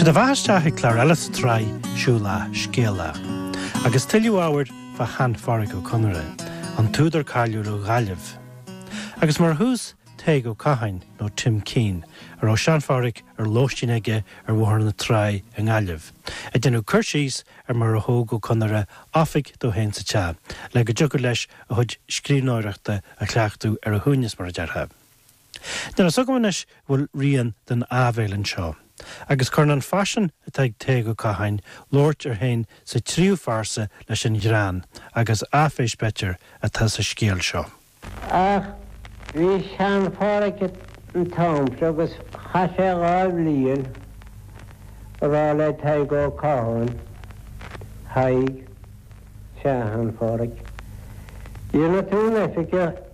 Sé do bheatha isteach ag clár eile sa tsraith Siúlach Scéalach. Agus tuilleadh ábhair fá Shean-Phádraic Ó Conaire, an t-údar cáiliúil ó Ghaillimh. Agus mar thús, Tadhg Ó Catháin, nó Tim Keane, a raibh Sean-Phádraic ar lóistín aige ar Bhóthar na Trá i nGaillimh, ag déanamh cur síos ar mar a thóg Ó Conaire oifig dó féin sa teach, le go dtiocfadh leis a chuid scríbhneoireachta a chleachtadh ar a shuaimhneas, mar a déarfá. Níl amhras agam anois go bhfuil rian den áibhéil anseo, agus cuireann an faisean atá ag Tadhg Ó Catháin labhairt air féin sa tríú pearsa leis an ghreann agus áiféis b'fhéidir atá sa scéal seo. Ach bhí Sean-Phádraic an t-am seo agus chaith sé dhá bhliain ag rá le Tadhg Ó Catháin, 'Thaidhg, Sean-Phádraic, dhéanfaidh tú an oifigeach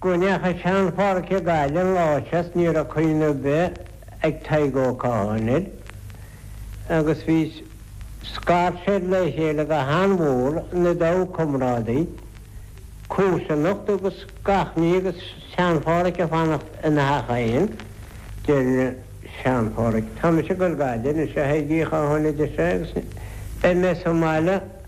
Go ndeacha Sean-Phádraic go Gaillimh an lá seo ní raibh cuimhne ar bith ag Tadhg Ó Catháin air agus bhí scairt fir le chéile go han-mhór ina dtaobh, comrádaí, comharsanacht agus gach ní agus Sean-Phádraic ag fanacht ina theach fhéin. Deir Sean-Phádraic, Tá mise ag goil Gaillimh anois a Thaidhg Uí Chatháin a deir sé agus beidh mé sa mbaile,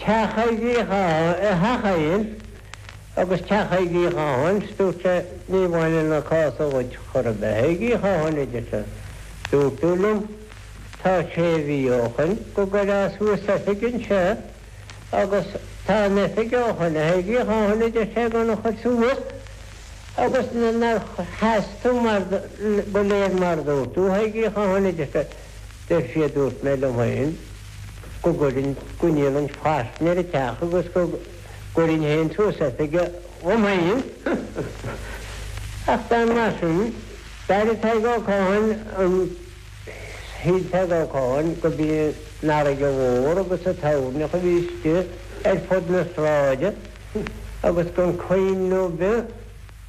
Teach Thaidhg Uí Chatháin agus teach Thaidhg Uí Chatháin, dúirt sé, ní bhaineann an cás seo dhuit chor ar bith. A Thaidhg Uí Chatháin a deir sé, dúirt tú liom tá sé mhí ó shoin go gcuirfeá suas oifig anseo agus tá an oifig ó shoin a Thaidhg Uí Chatháin a deir sé gan a chur suas agus níor sheas tú mar go léir mar dúirt tú. A Thaidhg Uí Chatháin a deir sé, deir sé dúirt mé liom féin, go gcuirfinn go ndéanfainn fairsinge ar an teach agus go gcuirfinn féin suas oifig dhom féin. Ach bean mar sin, d'airigh Tadhg Ó Catháin an, shíl Tadhg Ó Catháin go mb'í an fharraige mhór agus an toirneach a bhí istigh ar fud na sráide agus gan cuimhne ar bith